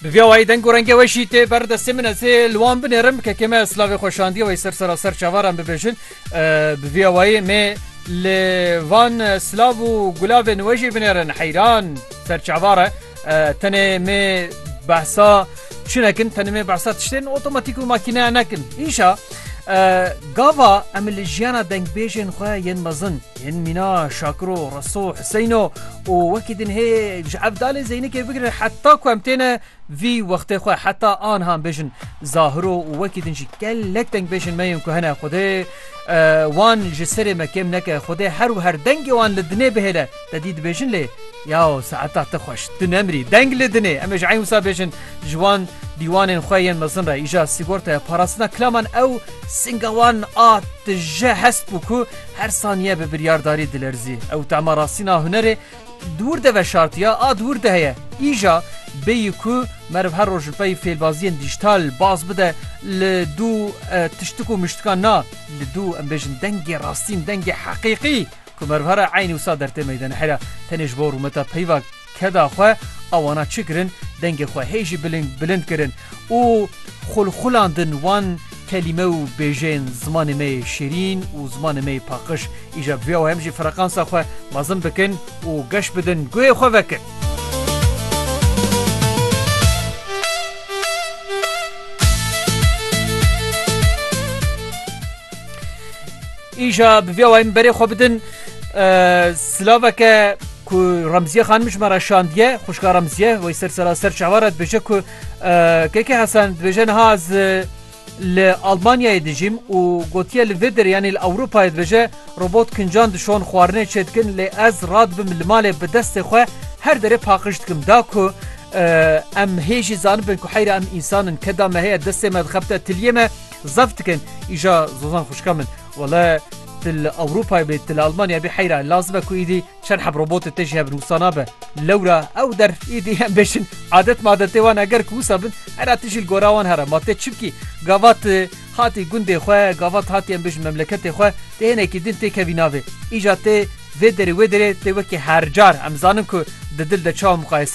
Bi vîya wayî deng û rengê we jî tê ber destê min ez ê li wan binêrim kekê me slavê xwe şandiye wayî ser sera ser çavaran bibêjin bi vîya wayî mê li van silav û gulavên we jî binêrin heyran ser çavare tenê mê behsa çi nekin tenê mê behsa tiştên otomatîk û makîneya nekin îşa gava em li jiyana dengbêjên xwe yên mezin Yên mîna Şakiro, Reso, Hiseyno û wekî din hê ji Evdalê Zeynikê bigire heta ku em têne vî wextê xwe heta anha em bêjin Zahiro û wekî din jî gelek dengbêjên me yên ku hene Xwedê wan ji serê me kêm neke Xwedê her û her dengê wan li dinê bihêle te dî dibêjin lê yaw saeta te xweş tu nemirî deng li dinê em ê ji eyn wisa bêjin ji wan dîwanên xwe yên mezin re îja sîgortaya parastina kilaman ew singa wan a tije hest bû ku Her saniye bi biryardarî dilerzî. Ew tema rastîna hunerê dûr de veşartiya, a dûr de heye. Îja bêyî ku meriv her roj li pey fêlbaziyên dîjtal baz bide li dû tiştik û miştikan na, li dû em bêjin dengê rastîn, dengê heqîqî ku meriv here eynî wisa dertê meydene here tenê ji bo rûmeta peyva keda xwe a wana çi kirin, dengê xwe hê jî biling bilind kirin û xulxulandin wan kelîme û bêjeyên zimanê me yê şêrîn û zimanê me yê paqij. Îja bi vê awe em jî freqansa xwe mezin bikin û geş bidin guhê xwe vekin. Îja bi vê awe em berê xwe bidin silaveke. Ku Remziye xanim ji me re şandiye, xwişka Remziye wey ser sera ser çawa re dibêje ku Keke Hesen dibêje niha ez li Almanyayê dijîm û gotiye li vê derê yanî li Ewropayê dibêje robot kincan dişon xwarinê çê dikin lê ez radibim li malê bi destê xwe her derê paqij dikim da ku em hê jî zanibin ku heyra em însan in keda me heye destê me dixebite tiliyê me zef dikin îja zozan xwişka min. Wele tu li Ewropayê bê, tu li Elmanyayê bê heyra e. Lazim e ku îdî çend heb robotê te jî hebin. Wisa nabe. Lewra ew der îdî em bêjin adet madetê wan e. Ger ku wisa bin hera tu jî li gora wan here. Ma tê çi bikî? Gava tu hatî gundê xwe, gava tu hatî em bêjin memleketê xwe. Tê hinekî din tê kevî navê. Îja tê vê derê wê derê tê wekî her car. Em zanin ku di dil de çawa muqayese in.